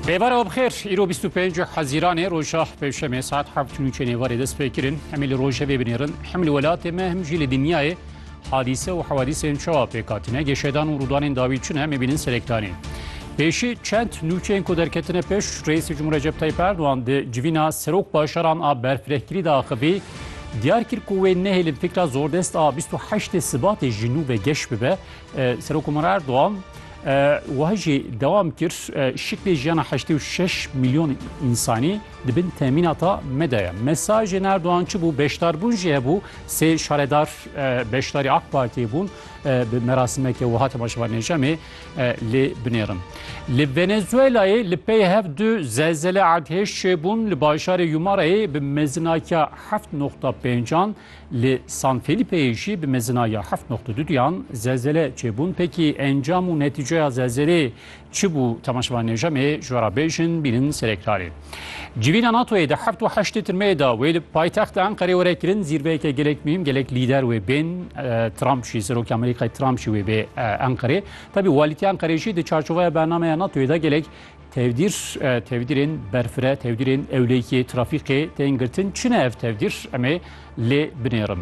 Rêber Abxêr îro 25 Hezîranê roja pêşemê saet heft û nûçê nêvarê dest pê kirin em ê li rojevê binêrin hem li welatê me hem jî li dinyayê hadîse û hewadîsên çawa pêkatine gêşedan û rûdanên dawî çi ne em ê bînin serektanê. Pêşî çend nûçeyên ku derketine pêş Reîsê Cumhur Recep Tayyip Erdogan di civîna serok bajaran a berfirehkirî de axivî diyar kir ku wê nehêlin fikra zordest a 28 Sibatê ji nû ve geş bibe. Serok Umar Erdogan Wiha jî dewam kir, Şiklê jiyana heştê û şeş milyon însanî di bin temînata me de ye. Mesajên Erdogan çi bû? Beşdarbûn jî hebû. Sê şaredar beşdarî AK Partiyê bûn. Bi merasimeke wiha temaşe van Nejemê lê binêrin. Li Venezuelayê li pey hev du zelzele erdhêj çêbûn. Li bajarê Yumarayê bi mezinakiya heft noxta pêncan Li San Felîpeyê jî bi mezina ya heft noqte du duyan zelzele çêbûn. Pekî encam û netîceya zelzelê çi bû? Temaşevanên Ejemê ji we re bêjin bînin serekdarê. Civîna NATO'yê di heft û heştê tirmeyê de wê li paytexta Enqerê were kirin. Zîrveyeke gelek muhîm, gelek lîder wê bên. Trump jî, Serokê Amerîkayê Trump jî wê bê Enqerê. Tevî walîtiya Enqerê jî di çarçoveya bernameya NATO'yê de gelek Tevdîr, tevdîrên berfire, tevdîrên ewlêkê, trafîkê tên girtin. Çi ne ev tevdîr? Em ê lê binêrin.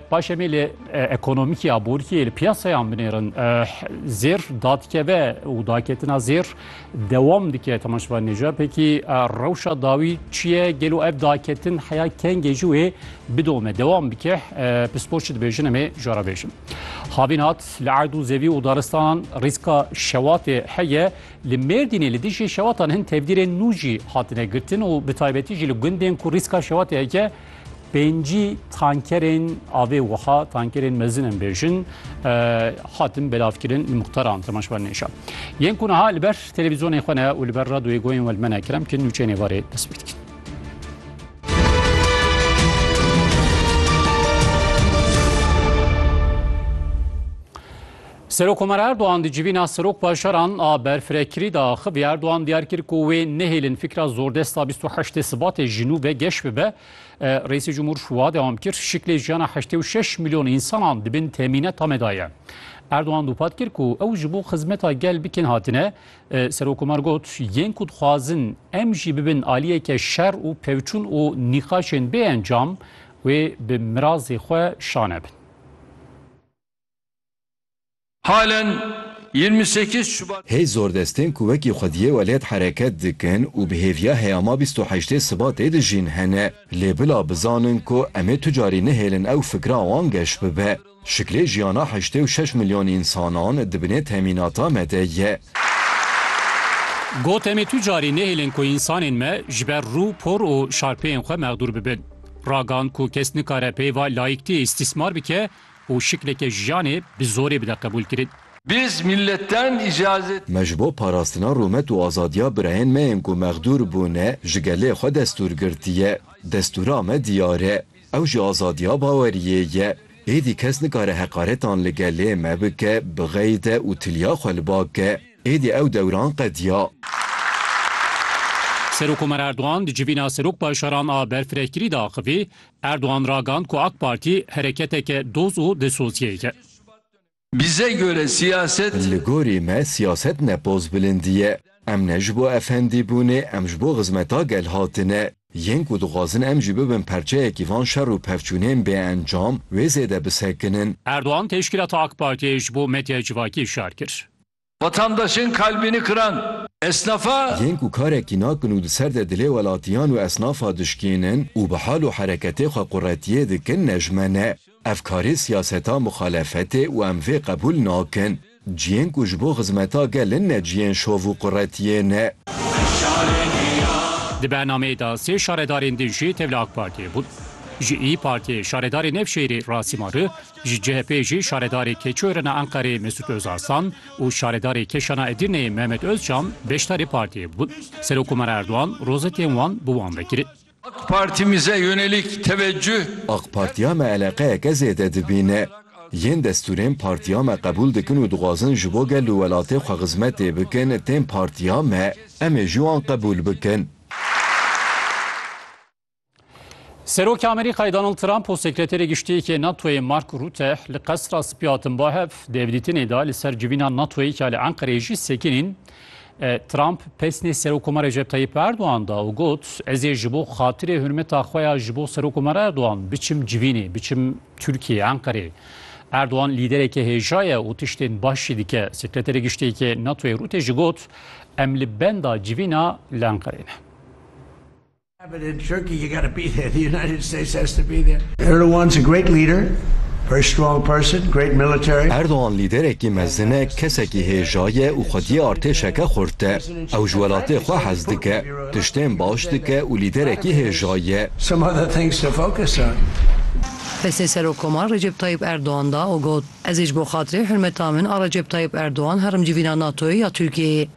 Paş em ê lê ekonomîkê ya borîyê li piyasayan binêrin. Zêr dadikeve û daketina zêr dewam dike temaşevan nêja. Pekî rewşa dawî çi ye? Gelo ev daketin heya kengê jî wê bidome dewam bike. Pispor çi dibêjin em ê jara bêjin. Havîn hat li erd û zevî û daristanan rîska şewatê heye. Li Mêrdînê li dijî şewatan hin tevdîrên nû jî hatine girtin û bi taybetî jî li gundên ku rîska şewatê heke pêncî tankerên avê wiha tankerên mezin em bêjin hatin belavkirin li muxtaran temaşvan nêşa. Yên ku niha li ber televîzyonê xwe ne û li ber radoyê goyên we li me ne kerem kin nûçeyên êvarê dest pê dikin. Serokkomar Erdogan di civîna serokbajaran a berfirekirî de axivî. Erdogan diyar kir ku wê nehêlin fikra zordesta bîst û heştê Sibatê ji nû ve geş bibe. Reîsê Cumhur şiwa dewam kir, Şiklê jiyana heştê û şeş milyon însanan di bin temîneta me de ye. Erdogan dûpat kir ku ew ji bo xizmeta gel bikin hatine. Serokkomar got, Yên ku dixwazin em jî bibin aliyeke şer û pevçûn û nîqaşên bê encam, wê bi mirazê xwe şane bin. Halen yirmi sekiz Şubat. Hê zordestên ku wekî xwediyê welêt hereket dikin û bi hêviya heyama bîst û heştê Sibatê dijîn hene. Lê bila bizanin ku em ê tu carî nehêlin ew fikra wan geş bibe. Şiklê jiyana heştê û şeş milyon însanan di binê temînata me de ye. Got, Em ê tu carî nehêlin ku însanên me ji ber rû, por û şarpeyên xwe mexdûr bibin. Ragand ku kes nikare peyva layîktiyê îstîsmar bike û şikleke jiyanê bi zorê bide qebûlkirin. Biz milletten icazet. Me ji bo parastina rûmet û azadiya birayên me yên ku mexdûr bûne ji gelê xwe destûr girtiye. Destûra me diyar e. Ew jî azadiya baweriyê ye. Êdî kes nikare heqaretan li gelê me bike, bixeyde û tiliya xwe li ba ke. Êdî ew dewran qediya. Serokomar Erdogan di civîna Serokbaşaran a berfirehkirî de axivî, Erdogan ragand ku AK Partî hereketeke doz û dilsozyeyek e. Bize göre siyaset. Li gorî me siyaset ne pozbilindî ye. Em ne ji bo efendî bûnê, em ji bo xizmeta gel hatine. Yên ku dixwazin em jî bibin perçeyekî van şer û pevçûnên bêencam, wê zêde bisekinin. Erdogan teşkîlata AK Partiyê ji bo medyaya civakî şer kir. Vatandaşên kalbini kıran esnafa. Yên ku karekî nakin û di ser de dilê welatiyan û esnafa dişkênin û bi hal û hereketê xwe quretiyê dikin nejme ne. Ev karê siyaseta muxalefetê û em vê qebûl nakin. Ciyên ku ji bo xizmeta gel in ne ciyên şov û quretiyê ne. Di bernameyê de sê şaredarên din jî tevli AK Partiyê bûn. Ji Îyi Partiyê şaredarê Nevşehîrê Rasî Mari Ji CHP'ê jî şaredarê Keçûerina Enqerê Mesûd Ozarsan û şaredarê Keşana Edirneyê Mehmet Ozcan beşdarê partiyê bûn. Serokkomar Erdogan rozetên wan bi wan ve kirin. AK Partimize yönelik teveccüh. AK Partiya me eleqeyeke zêde dibîne. Yên destûrên partiya me qebûl dikin û dixwazin ji bo gel û welatê xwe xizmetê bikin tên partiya me, em ê jî wan qebûl bikin. Serokê Amerîkayê Donald Trump û Sekreterê Giştiyekê NATOyê Mark Rûte li Qesra Spî hatin ba hev dêvdîtinê de li ser civîna NATOyê ka li Enqereyê jî sekinîn in. E, Trump pesnê Serokoma Recep Tayyip Erdogan da û got, Ez ê ji bo xatirê hurmeta xwe ya ji bo Serokoma Erdogan biçim civînê, biçim Tirkiyeyê, Enqereyê. Erdogan lîdereke hêja ye û tiştên baş jî dike. Sekreterê Giştiyekê NATOyê Rûte jî got, Em li benda civîna li Enqereyê ne. Erdogan lîderekî mezin e, kesekî hêja ye û xwediyê artêşeke xurt e. Ew ji welatê xwe hez dike, tiştên baş dike û lîderekî hêja ye. Destê Serokkomar Recep Tayyip Erdogan da û got, Ez ê ji bo xatirê hurmeta min a Recep Tayyip Erdogan herim civîna NATO'yê ya Tirkiyeyê.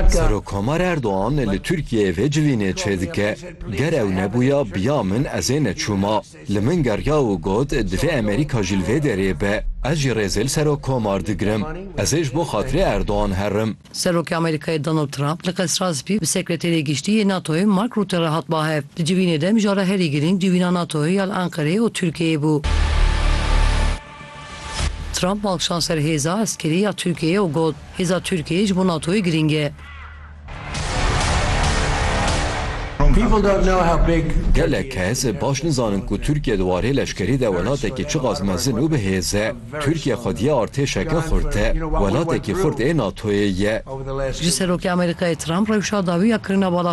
Serokkomar Erdogan li Tirkiyeyê vê civînê çêdike, Ger ew nebûya biya min ez ê neçûma. Li min geriya û got, divê Amerîka jî li vê derê be. Ez jî rêzê li Serokkomar digirim. Ez ê ji bo xatirê Erdogan herim. Serokê Amerîkayê Donald Trump li Qesra Spî bi Sekreterê Giştî yê NATO'yê Mark Rutte re hat bahev. Di civînê de mijara herî girîng civîna NATO'yê ya li Enqereyê û Tirkiyeyê bû. Trump malkişand ser hêza eskerî ya Tirkiyeyê û got, Hêza Tirkiyeyê ji bo NATOyê girîng e. Gelek kes baş nizanin ku Tirkiye di warê leşkerî de welatekî çiqas mezin û bi hêz e. Tirkiye xwediya artêşeke xurt e. Welatekî xurt ê NATOyê ye. Ji Serokê Amerîkayê Trump rewşa dawî ya kirina bala